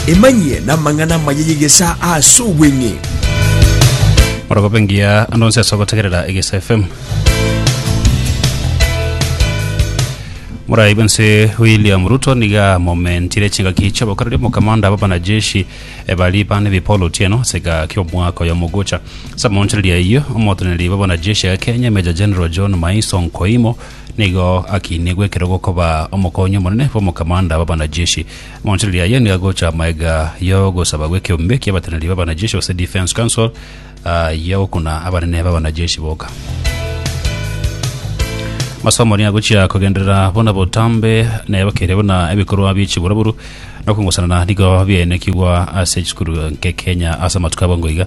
Emanyie namang'ana amaya y'egesaa ase obweng'e. Orogobe engiya ande onsi ase ogotegerera Egesa FM. Morai bwense William Ruto niga momentire chingaki chi'obokoreri omokamanda b'abanajeshi eh, bari bane bi Paul Otieno ase egaki omwaka oyo mogocha. Ase amonchereria ayio, omoteneneri bw'abanajeshi ya Kenya Major General John Maiso Nkoimo Nigo akiinigwe ekero gokoba omokonyi omonene bw'omokamanda bw'abanajeshi. Amo amache riria aye nigo agocha amaega y'ogosaba gw'ekeombe ki'abateneneri b'abanajeshi, gose Defence Council, y'ogokuna abanene b'abanajeshi boka. Masomo nigo agochia kogenderera buna botambe na ebakeire buna ebikorwa bie chiburaburu na okongosanana nigo biaenekigwa ase chisukuru nke Kenya ase amatuko abo ngoiga.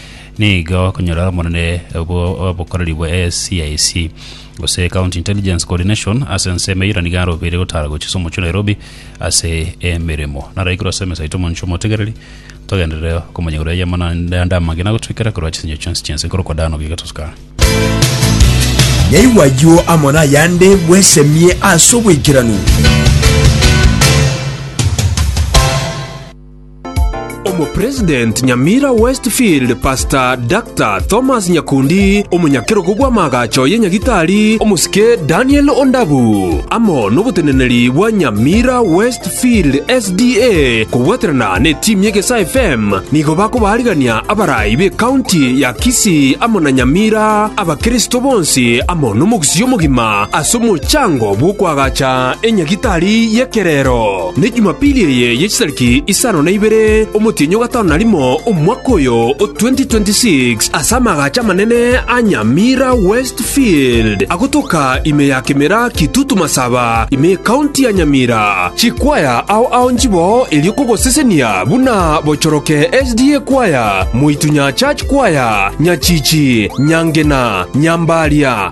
nigo okonyora omonene bw'obokoreri bwa SCIC gose County Intelligence Coordination ase ensemo eyio na nigo arobeire gotara gochia ase omochie o Nairobi ase emeremo. Naraikire ase emesa yaito omonche omotegereri togenderere okomonyegora eria amanande ande amangina gotoikera korwa chisinyo chionsi chi'ense nkorokwa Dan Ogiga Toscar. Yaigwa ayio amo nayande bwesemie ase obwaikeranu. Omopresident Nyamira West Field Pastor Dr. Thomas Nyakundi, omonyakerogo bw'amaagacho ye Nyagitari omosike Daniel Ondabu, amo noboteneneri bwa Nyamira West Field SDA kobwaterana ne team ye Gesaa FM nigo bakobaarigania abarai be county ya Kisii amo na Nyamira abakristo bonsi amo nomogusii omogima ase omochango bw'okoagacha enyagitari y'ekerero. Ne Jumapili eye ye chitariki isano na ibere omotienyi o gatano na rimo omwaka oyo o 2026, ase amagacho amanene a Nyamira Westfield, agotoka ime ya Kemera Kitutu Masaba, ime y'Ekaunti ya Nyamira, chikwaya ao ao nchiboo erio kogosesenia buna Bochoroke SDA Kwaya, Moitunyaa Church Kwaya, Nyachichi, Nyangena, Nyambaria,